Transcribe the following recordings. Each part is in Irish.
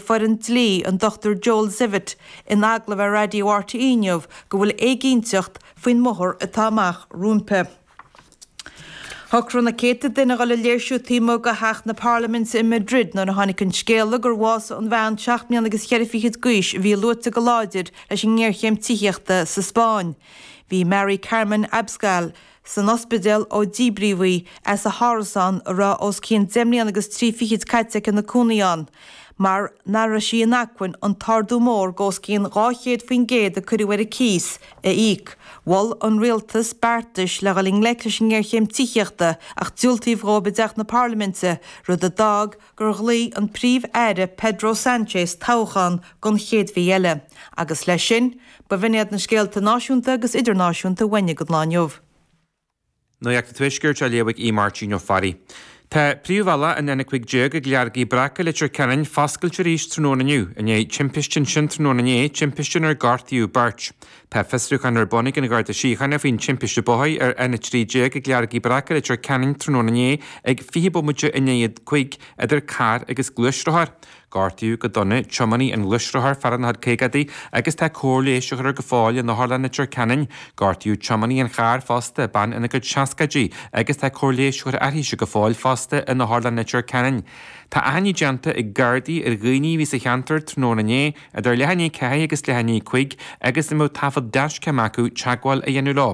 foireann dlí an Dochtúir Joel Zivit in agallamh ar Raidió RTÉ inniu go bhfuil éiginnteacht faoin mbóthar atá amach rompu. Shocraigh na céadta duine a dhul ag léirsiú taobh amuigh de Theach na Parlaiminte in Madrid nuair a tháinig an scéala gur bhásaigh an bhean seacht mbliana agus ceithre fichid d'aois a bhí luaite go láidir leis an ngéarchéim tithíochta sa Spáinn. Bhí Mari Carmen Abascal, san ospidéal ó díbríodh í as a hárasán a raibh os cionn deich mbliana agus trí fichid caite aici ina cónaí ann mar nach raibh sí in acmhainn an t-ardú mór d'os cionn 200% a cuireadh ar a cíos a íoc. Mhol an Rialtas beartais le dhul i ngleic leis an ngéarchéim tithíochta ach diúltaíodh dhóibh i dTeach na Parlaiminte, rud a d'fhág gur ghlaoigh an Príomh-Aire Pedro Sánchez toghchán don chéad mhí eile, agus leis sin, b'in iad na scéalta náisiúnta agus idirnáisiúnta mar a bhain leis an lá inniu. Nuacht an Tuaiscirt á léamh ag Aodh Máirtín Ó Fearraigh. Tá príomhbhealach an N15 ag Leargaigh Bhreac, Leitir Ceanainn foscailte arís tráthnóna inniu i ndiaidh timpiste ansin tráthnóna inné, timpiste inar gortaíodh beirt. Tá fiosrúchán ar bun ag an Gharda Síochána faoin timpiste bóthair ar an N13 ag Leargaigh Bhreac i Leitir Ceanainn tráthnóna inné ag 20 bomaite i ndiaidh a cúig idir carr agus gluaisrothar. Gortaíodh go dona tiománaí an ghluaisrothair, fear ina chuid caogaidí agus tá cóir leighis á chur air go fóill in Otharlann Leitir Ceanainn. Gortaíodh tiománaí an chairr fosta, bean ina cuid seascaidí agus tá cóir leighis á chur uirthise go fóill fosta in Otharlann Leitir Ceanainn. Tá achainní déanta ag Gardaí ar dhaoine a bhí sa cheantar tráthnóna inné, idir leath i ndiaidh a ceathair agus leath i ndiaidh a cúig, agus a mbeadh taifead dashcam acu teagmháil a dhéanamh leo.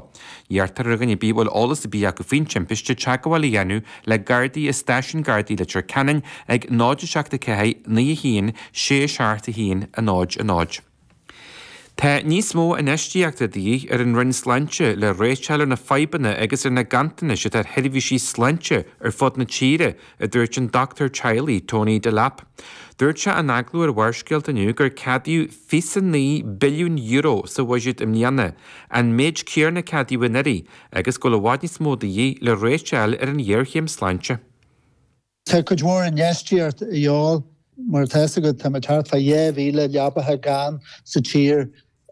Iarrtar ar dhuine ar bith a bhfuil eolas ar bith acu faoin timpiste teagmháil a dhéanamh le Gardaí i Stáisiún Gardaí Leitir Ceanainn ag 0 7 4 9 1 6 7 1 0 0. Tá níos mó infheistíochta de dhíth ar an Roinn Sláinte le réiteach a fháil ar na fadhbanna agus ar na ganntanais atá ar sheirbhísí sláinte ar fud na tíre, a dúirt an doctúir teaghlaigh, Tony Delap. Dúirt sé in agallamh ar Bharrscéalta inniu gur ceadaíodh faoi €9 billiún sa bhuiséad i mbliana, an méid céann a ceadaíodh anuraidh, agus go bhfuil i bhfad níos mó de dhíth le réiteach a fháil ar an ghéarchéim sláinte. Tá cuid mhór infheistíocht de dhíobháil. Mar atá fhios agat, tá muid thart fá dhá mhíle leabthacha gann sa tír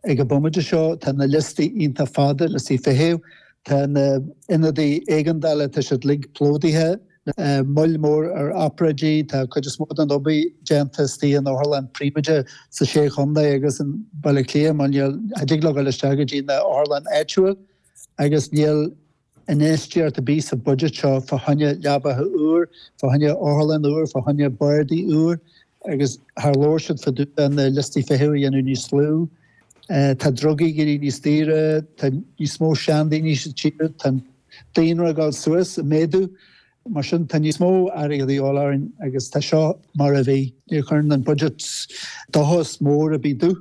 Ag an bhomaite seo tá na liostaí iontach fada, liostaí feithimh, tá na hionadaí éigeandála, tá siad uilig plódaithe, moill mór ar obráidí, tá cuid is mó den obair déanta istigh in otharlann príobháideach sa Sé Chondae agus i mBaile Átha Cliath mar níl, cha dtig leo dul isteach go dtí na hotharlann áitiúil agus níl, Infheistíocht a bhí sa bhuidéad seo fá choinne leabaithe úr, fá choinne otharlann úr, fá choinne bardaí úr agus thar leor siúd fá dtaobh de na liostaí feithimh a dhéanamh níos lú. Tá drugaí ag éirí níos daoire, tá níos mó seandaoine sa tír, tá an daonra ag dul suas, ag méadú, mar sin tá níos mó airgead a dhíol orainn agus tá seo mar a bhí. Níor chuir an budget dochas mór ar bith do.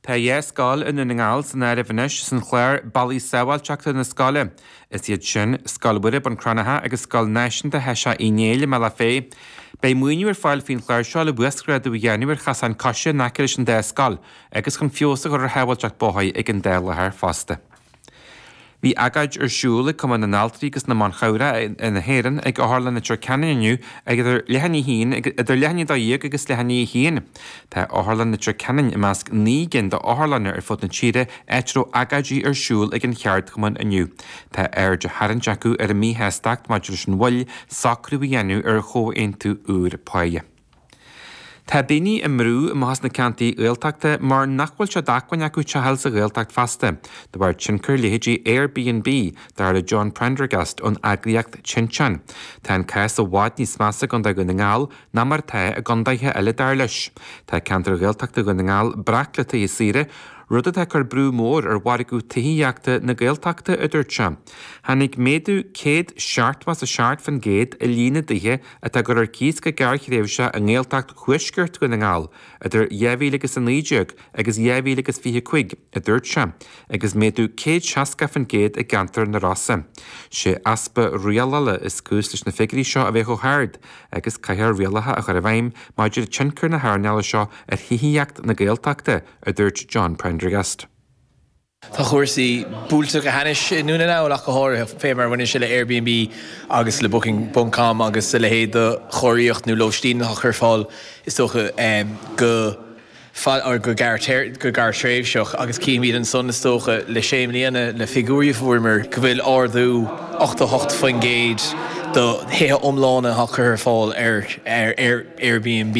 Tá dhá scoil i nDún na nGall san áireamh anois san chlár Bealaí Sábháilte chun na Scoile. Is iad sin, Scoil Mhuire, Bun Cranncha agus Scoil Náisiúnta Sheisíoch Uí Néill i mBaile Átha Féi. Beidh maoiniú ar fáil faoin chlár seo le uasghrádú a dhéanamh ar chasáin coise in aice leis an dá scoil agus chun feabhas a chur ar shábháilteacht bóthair ag an dá láthair fosta. Bhí agóid ar siúl ag Cumann na nAltraí agus na mBan Cabhrach na hÉireann ag Otharlann Leitir Ceanainn inniu ag idir leath i ndiaidh a dó dhéag agus leath i ndiaidh a haon. Tá Otharlann Leitir Ceanainn i measc naoi gcinn d'otharlanna ar fud na tíre áit a raibh agóidí ar siúl ag an cheardchumann inniu. Tá aird á tharraingt acu ar an mhíshástacht maidir leis an mhoill socrú a dhéanamh ar chomhaontú úr páighe. Tá daoine á mbrú amach as na ceantair Ghaeltachta mar nach bhfuil sé d'acmhainn acu teach a fháil sa Ghaeltacht feasta, de bharr tionchar leithéidí Airbnb, dar le John Prendergast ón eagraíocht Tinteán. Tá an cás i bhfad níos measa i gContae Dhún na nGall ná mar atá i gcontaetha eile, dar leis. Tá ceantar Ghaeltachta Dhún na nGall breac le tithe saoire, rud atá ag cur brú mór ar mhargadh tithíochta na Gaeltachta, a dúirt sé. Tháinig méadú céad seachtó is a seacht faoin gcéad i líon na dtithe atá á gcur ar cíos go gearrthréimhse i nGaeltacht Thuaisceart Dhún na nGall idir 2019 agus 2025, a dúirt sé, agus méadú 160% i gceantar na Rosa. Sé easpa rialála is cúis leis na figiúirí seo a bheith chomh hard agus caithfear rialacha a chur i bhfeidhm maidir le tionchar na hearnála seo ar thithíocht na Gaeltachta, a dúirt John Prendergast. Tá cúrsaí buailte go hainnis i nDún na nGall ach go háirid, fé mar a bhaineann sé le Airbnb agus le Booking ponc com agus a leithéid de chóiríocht nó lóistín atá curtha ar fáil is dócha go, go, go gearrtréimhseach agus cífimíd ansan is dócha le sé mbliana le figiúirí a fuaireamar go bhfuil ardú 88% do thithe iomlána á gcur ar fáil ar Airbnb